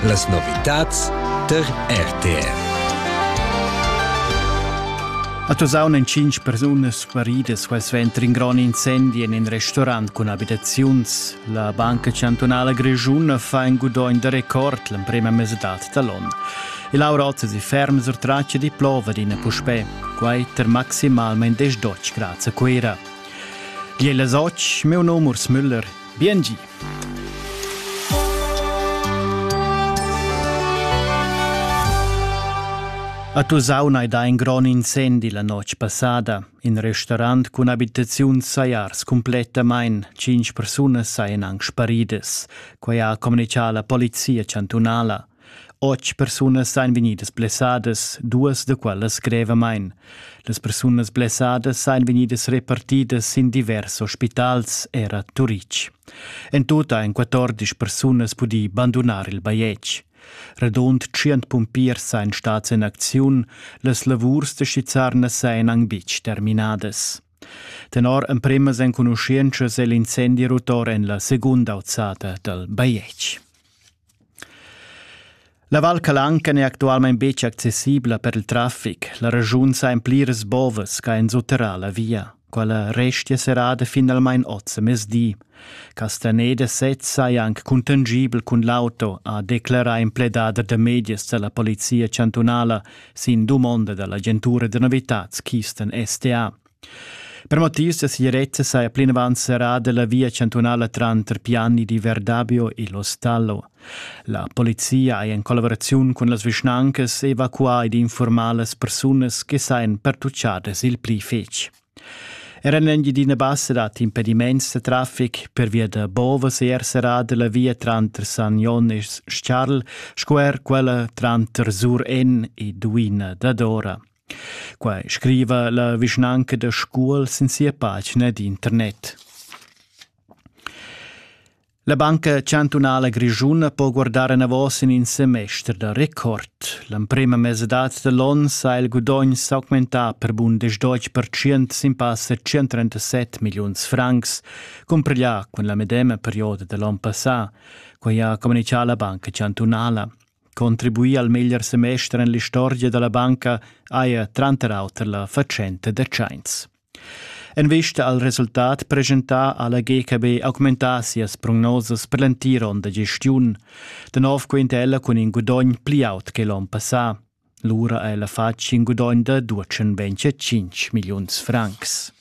Las novitads tar RTR. A Tosaun èn cinq persunas guaridas quel suenter in grond incendi en in restaurant cun abitaziuns. La Banca Chantunala Grischuna fa in gudogn da record l'emprima mesadad da l'onn. Il Aurot si ferm sur traccia di plova d'ina puspè, quai ter maximalmain 10 grads a Cuira. Di las 8, meu num Urs Müller. Bien gi! A Tusaun ei da in gron incendi la notg passada. In restaurant cun abitaziun sajars complettamain. Cinc persunas sajan anc sparidas. Quai ha communicà la polizia chantunala. Otg persunas ein vegnidas blessadas, duas da quellas grevamein. Las persunas blessadas ein vegnidas repartidas sin divers ospitals era Turitg. En tut ein 14 persunas pudì bandunar il bajetg. Radund 100 pumpiers ein stats in acziun, las lavurs da Schizarnas ein anc betg terminadas. Tenor empremas enconuschientschas è l'incendi rotor en la segunda auzada dal bajetg. La Val Calanca n'è actualmain betg accessibla per il traffic. La regiun sa en pliras bovas ch'ha enzuterà la via. Quella restia serrada finalmain oz a mezdi. Castaneda sez saja anc cuntangibel cun l'auto, ha declerà in pledader da medias da la polizia chantunala sin dumonda da l'agentura da novitads Keystone STA. Per motivs da segirezza saja plinavant serrada la via chantunala tranter Piani di Verdabio e L'Ostallo. La polizia ha en collaboraziun cun las vischnancas evacuà ed infurmà las persunas che sajan pertucchadas il pli fetg. Era en l'Engiadina Bassa dat impediments da traffic per via da Bovas è er serrada la via tranter San Jon e Charl sco er quella tranter Sur En e Duina dadora. Quai scriva la vischnanca da Scuol sin sia pagina d'internet. La Banca Chantunala Grischuna po guardar enavos in in semester da record. L'emprema mesedad da l'on sa il gudogn s'augmentà per bun 10% sin passa 137 milliuns francs, compareglià cun la medema perioda da l'on passà, quai ha communichà la Banca Chantunala. Contribuì al meglier semester en l'istorgia da la banca haja tranter auter la fatschenta da tschains. En vista al resultat presentà ha la GKB augmentà sias prognosas per l'entir onn da gestiun. Da nov quinta ella cun in gudogn pli aut che l'onn passà. Lura ha ella fatg in gudogn da 225 milliuns francs.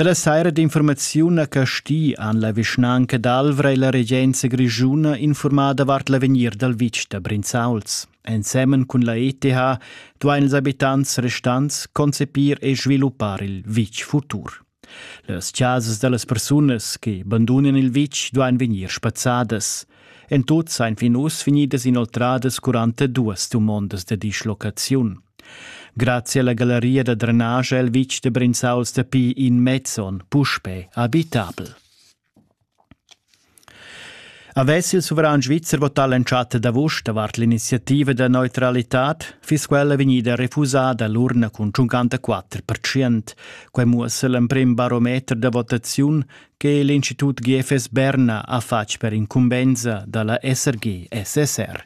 Dalla saira d'informaziun a Casti han la vischnanca d'Alvra e la regenza grischuna informau davart l'avegnir dal vitg da Brinzauls. Ensemen cun la ETH duain ils abitants restants concepir e sviluppar il vitg futur. Las chasas da las persunas che bandunan il vitg duain vegnir spazzadas. En tut sain fin uss vegnidas inoltradas 42 dumondas da dislocaziun. Grazia alla galleria da drenage ha il vitg da Brinzau stapì in mezzon puspè abitabel. Avess il suveran svizzer votà l'entschatta d'avust davart l'iniziativa da neutralitad, fiss quella vegnida refusada l'urna cun 54%. Quai muossa l'emprim barometer da votaziun che l'Institut GFS Berna ha fatg per incumbensa da la SRG-SSR.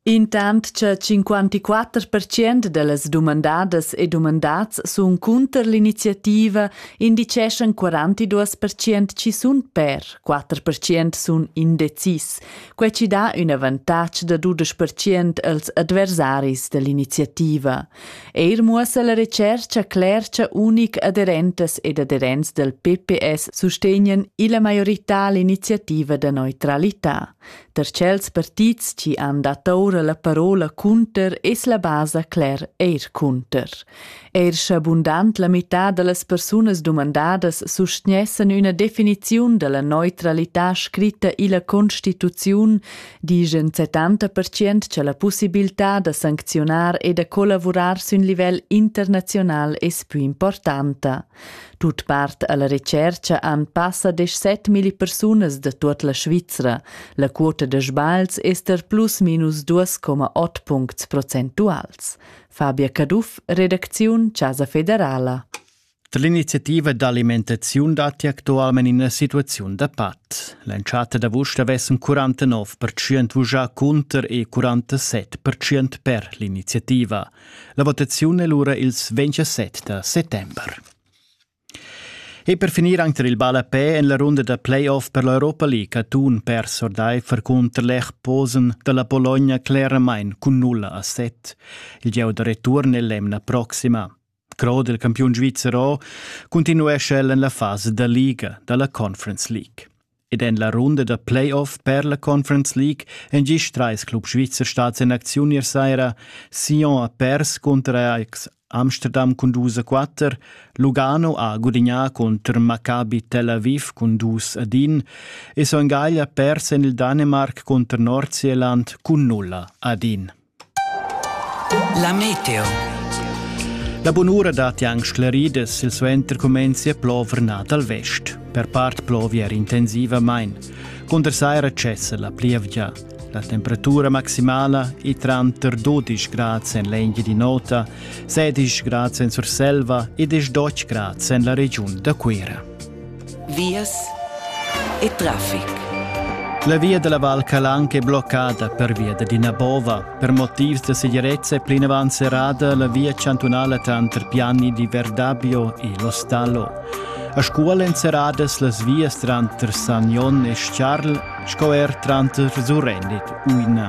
Intant cha cinquantiquatter pertschient da las dumandadas e dumandats sun cunter l'iniziativa, indicheschan quarantaduos pertschient chi sun per, quatter pertschient sun indecis. Quai chi dà ün avantatg da dudesch pertschient als adversaris da l'iniziativa. Eir muossa la retschercha cler cha unic aderentas ed aderents dal PPS sustegnan illa maiorità l'iniziativa da neutralità. Da tschels partits chi han dat oura la parola cunter es la basa cler eir cunter. Eir scha bundant la mità da las persunas dumandadas sustgnessan üna definiziun da la neutralità scritta illa Constituziun, dischan 70% cha la pussibiltà da sancziunar e da collavurar sün livel internaziunal es pü importanta. Tut part alla retscherca han passa desch set milli persunas da tut la Svizra. La quota da sbagls ester plus minus 2,8 puncts procentuals. Fabia Caduff, redacziun Casa Federala. L'iniziativa d'alimentaziun datti actualmente in situazione da pat. L'entschatta d'avust avessem 49% vugià cunter e 47% per l'iniziativa. La votaziun è lura ils 27 da settember. E per finir anche il ballapè en la runda da playoff per l'Europa League ha un perso ordaifer contro l'Echposen della Bologna claramente con 0 a 7. Il gieu da return è l'emna prossima. Crod, il campiun svizzero, continuesce el en la fase da Liga dalla Conference League. Ed en la runda da playoff per la Conference League èn gist trais clubs svizzer stads en acziun ier saira. Sion ha pers cunter Ajax Amsterdam cun dus a quatter, Lugano ha gudignà cunter Maccabi Tel Aviv cun dus ad in e Son Gagl ha pers en il Danemarc cunter Nordsjælland cun nulla ad in. La meteo. La bunura datti anche sclerida silsuenter cumenzia plover nà dal vest. Per part plovi er intensivamain. Cunter saira cessa la plievgia. La temperatura maximala è tranter 12 grad en l'Engia di Nota, 16 grad en Surselva e 12 grad en la regiun da Cuira. vias e traffic. La via dalla Val Calanca è bloccada pervia da d'ina bova. Per motivs da segirezza è plinavant serrada la via chantunala tanter Piani di Verdabio e L'Ostallo. A Scuol èn serradas las vias tranter Sagnon e Charl sco er tranter Surendit u Ina.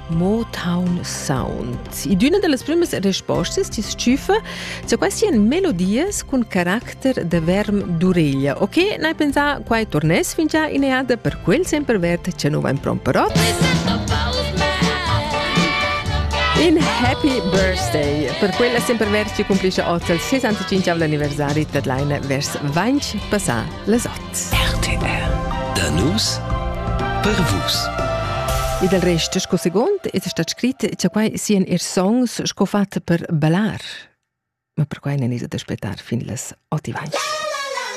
Motown Sounds. In üna da las prümas respostas ti tschüfa za quaisien melodias cun caracter da verm d'ureglia. Ok, n'hai pensà quai torness fingià ineada per quel sempre verd cha nu vain promperot. In happy birthday per quella sempre verd che cumplisce oz il 65 anniversari d'Adlaina vers 20 passà las 8. RTL Da nus per vus. E del resto, sco segund, è stato scritto che quai siano i songs sco fatti per ballar. Ma per quai non è da aspettare fin las 8 avanti.